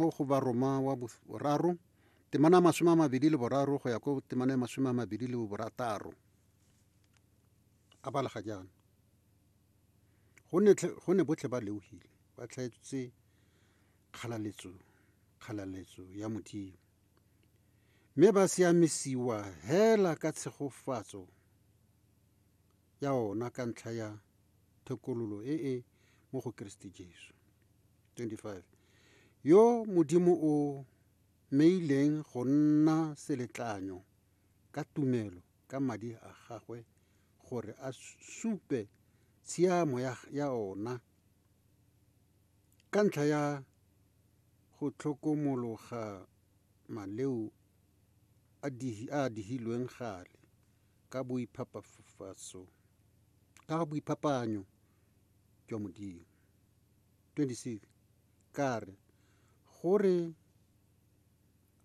mo go Baroma wa boraro, temana ya masome a mabedi le boraro go ya ko temana ya masome a mabedi le borataro. A balega jaana. Go ne botlhe ba leogile, ba tlhaetsetse kgalaletso, kgalaletso ya Modimo. Mme ba siamisiwa hela ka tshegofatso ya ona ka ntlha ya thekololo e e mo go Keresete Jesu. 25 yo Modimo o meileng go nna seletlanyo ka tumelo ka madi a gagwe gore a supe tshiamo ya, ya ona ka ntlha ya go tlhokomologa maleo a, dihi, a dihilweng gale ka boiphapafatso ka ga boiphapaanyo jwa Modimo. 26 ka re gore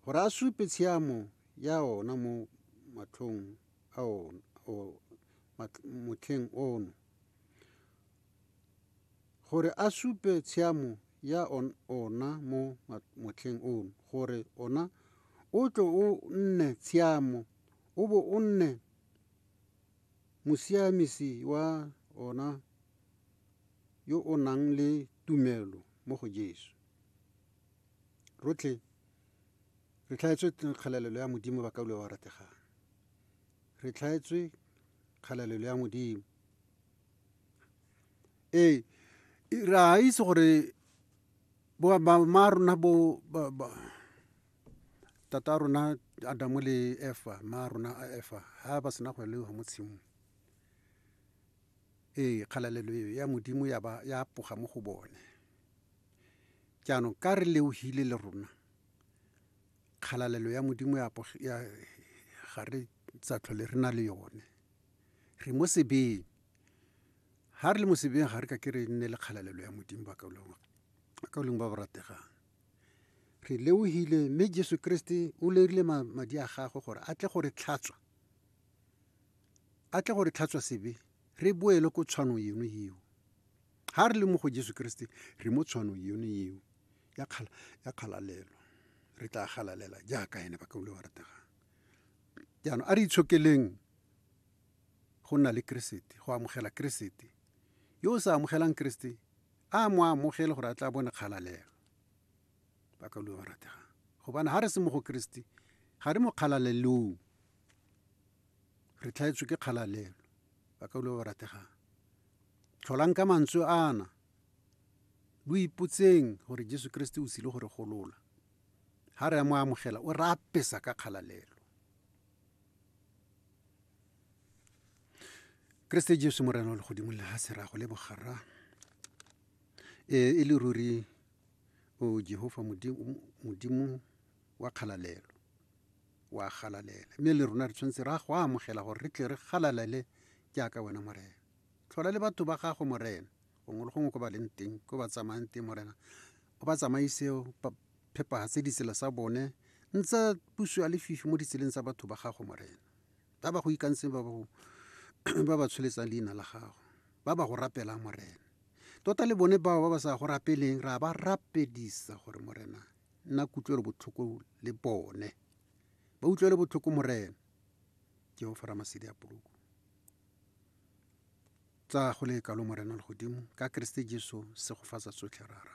gore a supe tshiamo ya ona mo matlhong a ona motlheng ono gore a supe tshiamo ya ona mo motlheng ono gore ona o tlo o nne tshiamo o bo o nne mosiamisi wa ona yo o nang le tumelo mo go Jesu. Rotlhe re tlhaetswe kgalalelo ya Modimo ba kaulwa ba rategang. Re tlhaetswe kgalalelo ya Modimo. Ee, re a itse gore bo ba rona bo ba. tata rona adamu le efa ma rona a efa ha ba sena go eloa mo tshimong ee kgalalelo eo ya modimo ya ba ya poga mo go bone jaanong ka re leohile le rona kgalalelo ya modimo ya ga re tsa tlhole re na le yone re mo sebeng ha re le mo sebeng ga re ka ke re nne le kgalalelo ya modimo ba ka boleng ba ba rategang Re leohile mme Jesu Keresete o lerile madi a gagwe gore a tle go re tlhatswa, a tle go re tlhatswa sebe re boele ko tshwanong eno eo. Ga re le mo go Jesu Keresete re mo tshwanong eno eo ya kgalalelo, re tla galalela jaaka ene ba kaule wa rategang. Jaanong a re itshokeleng go nna le Keresete, go amogela Keresete. Yo o sa amogelang Keresete a mo amogele gore a tla bone kgalalela ba ka lue ba rategang gobane ga re se mo go keresete ga re mo kgalalelong re tlhaetswe ke kgalalelo ba ka lue ba rategang tlholang ka mantswe ana lo ipotseng gore jesu keresete o sile gore golola ga re a mo amogela o re apesa ka kgalalelo keresete jesu morena wa legodimo le ga sera go le bogarra ee e le ruri o jehofa modimo wa kgalalelo wa galalela mme le rona re tshwanetse ra go amogela gore re tle re galalele jaaka wena morena tlhola le batho ba gago morena gongwe le gongwe ko ba leng teng ko ba tsamayang teng morena o ba tsamaise phepagatse ditsela sa bone ntse puso ya lefifi mo ditseleng tsa batho ba gago morena ba ba go ikantseng ba ba ba tsholetsang leina la gago ba ba go rapelang morena tota le bone bao ba ba sa go rapeleng ra ba rapedisa gore morena nna kutlwelo botlhoko le bone ba utlwele botlhoko morena ke o fara masedi a poloko tsa go le kalo morena le godimo ka keresete jesu se go fatsa tsotlhe rara